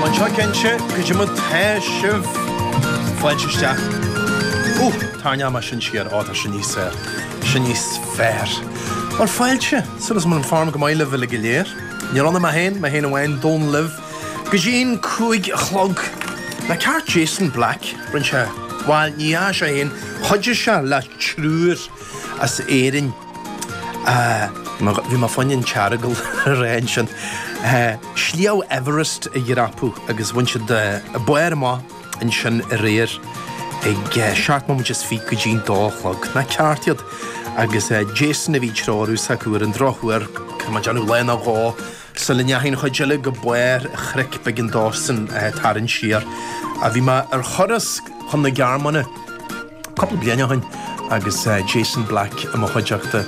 Anseo cinnte atá muid, tá sibh fáilte isteach. Úh, tarraingeoidh mé sin siar, ó tá sé níos, sé níos fearr. Bhuel fáilte, súil is go bhfuil an form go maith libh uilig go léir, níl ann ach mé féin, mé féin amháin, Dónall libh go dtí an cúig a chlog. Nach ceart Jason Black rinne sé, bhuel ní dhearna sé féin, chuidigh sé le triúr as Éirinn, Ahh, bhí mé fá choinne an tEaragal a rá ansin. Sliabh Everest a dhreapadh agus bhain siad barr amach ansin aréir ag seacht mbomaite is fiche go dtí an dó a chlog. Nach ceart iad? Agus Jason a bhí ag treorú s'acu, ar an drochuair, caithfidh mé déanamh lá nó dhó! Sula ndeachaigh an chuid eile go barr an chnoic b'éigean dósan tarraingt siar ach bhí mé, ar thuras chun na Gearmáine cúpla bliain ó shin agus Jason Black i mo chuideachta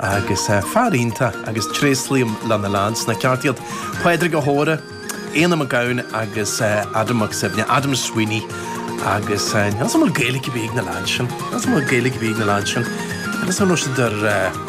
agus fear iontach agus tréaslaím le na leaids, nach ceart iad? Pádraig Ó hÓra, Éanna Mac Gabhann agus Adam Mac Suibhne, Adam Sweeney agus níl a fhios agam an bhfuil Gaeilge ar bith ag na leaids sin, an bhfuil Gaeilge ar bith ag na leaids sin agus an raibh siad ar.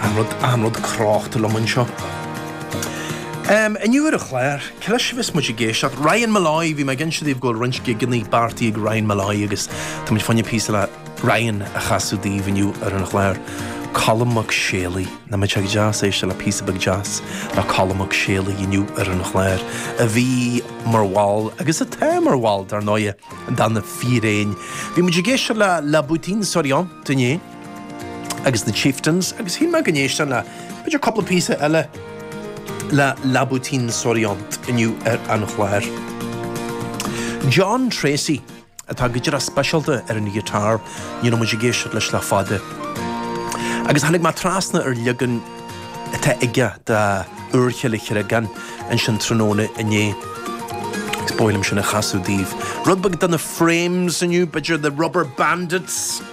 An rud cráchta liom anseo inniu ar an chlár, cé leis a bheas muid ag éisteacht. Ryan Molloy, bhí mé ag inse daoibh go bhfuil roinnt gigeannaí beartaithe ag Ryan Molloy agus tá muid fá choinne píosa le Ryan a chasadh daoibh inniu ar an chlár. Colm Mac Séalaigh, nach mbeadh sé go deas éisteacht le píosa beag deas le Colm Mac Séalaigh inniu ar an chlár, a bhí mar bhall, agus atá mar bhall, dar ndóighe, de Na Fíréin. Bhí muid ag éisteacht le La Bottine Souriante inné. agus na Chieftains agus shíl mé go n-éistfinn le b'fhéidir cúpla píosa eile le La Bottine Souriante inniu ar an chlár. John Treacy atá go díreach speisialta ar an ghiotár ní raibh muid ag éisteacht leis le fada agus tháinig mé trasna ar leagan atá aige de Úirchill an Chreagáin ansin tráthnóna inné agus ba mhaith liom sin a chasadh daoibh. Rud beag de na Frames inniu, b'fhéidir The Rubberbandits.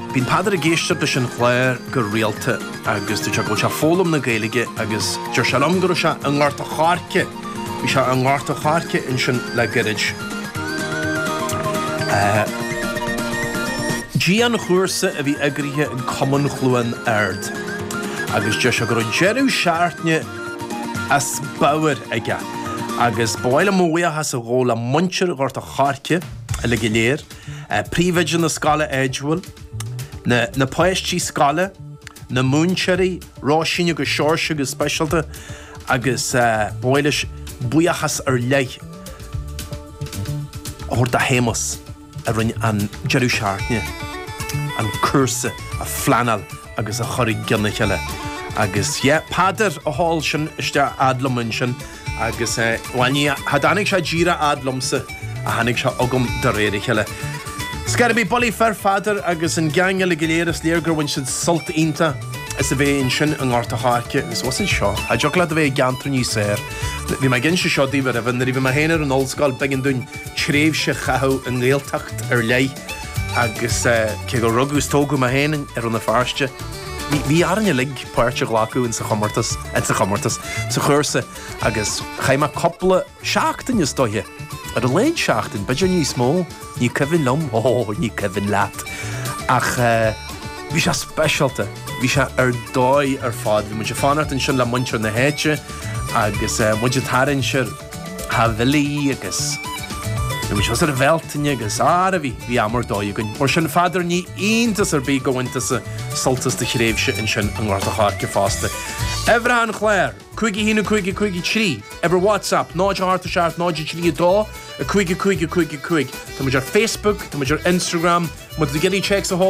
Bíonn Peadar ag éisteacht leis an chlár go rialta agus deir sé go bhfuil sé ag foghlaim na Gaeilge agus deir sé liom go raibh sé i nGort a' Choirce, bhí sé i nGort a' Choirce ansin le goirid. Dianchúrsa a bhí eagraithe ag Cumann Chluain Ard agus deir sé go raibh deireadh seachtaine as bóthar aige agus ba mhaith liom mo bhuíochas a ghabháil le muintir Ghort a' Choirce uilig go léir, Príomhoide na scoile Edgewell, na páistí scoile, na múinteoirí, Róisín agus Seoirse go speisialta agus ba mhaith leis buíochas ar leith a thabhairt do Shéamus a rinne an deireadh seachtaine, an cúrsa a phleanáil agus a chur i gcionn a chéile. Agus yeah, Peadar a sheol sin isteach fhad liom ansin. Agus eh, bhuel ní tháinig sé díreach fhad liomsa, ach tháinig sé chugam de réir a chéile. Ar scor ar bith, bulaí fir, a Pheadair agus an geaing eile go léir, is léir gur bhain siad sult iontach as a bheith ansin i nGort a' Choirce agus bhí siad seo, cha dtiocfadh leat a bheith i gceantar níos fearr. Bhí mé ag inse seo daoibh aroimhe, nuair a bhí mé féin ar an ollscoil b'éigean dúinn tréimhse a chaitheamh i nGaeltacht ar leith agus eh, cé gur rugadh is tógadh mé féin i Rann na Feirste, bhí orainn uilig, páirt a ghlacadh in sa chomórtas, sa chúrsa agus chaith mé cúpla seachtain, is dóiche, ar a laghad seachtain, b'fhéidir níos mó, ní cuimhin liom, oh, ní cuimhin leat, ach eh, bhí sé speisialta, bhí sé ar dóigh ar fad, bhí muid ag fanacht ansin le muintir na háite agus eh, muid ag tarraingt ar. Theach Bhillie agus thuas ar an Bhealtaine agus Ara bhí, bhí am ar dóigh againn. Mar sin a Pheadair ní iontas ar bith gur bhain tusa sult as do thréimhse ansin i nGort an Choirce fosta. Uimhir an chláir, 51553, uimhir WhatsApp 087 032 55 55. Tá muid ar Facebook, tá muid ar Instagram, muid ag iarraidh téacs a sheoladh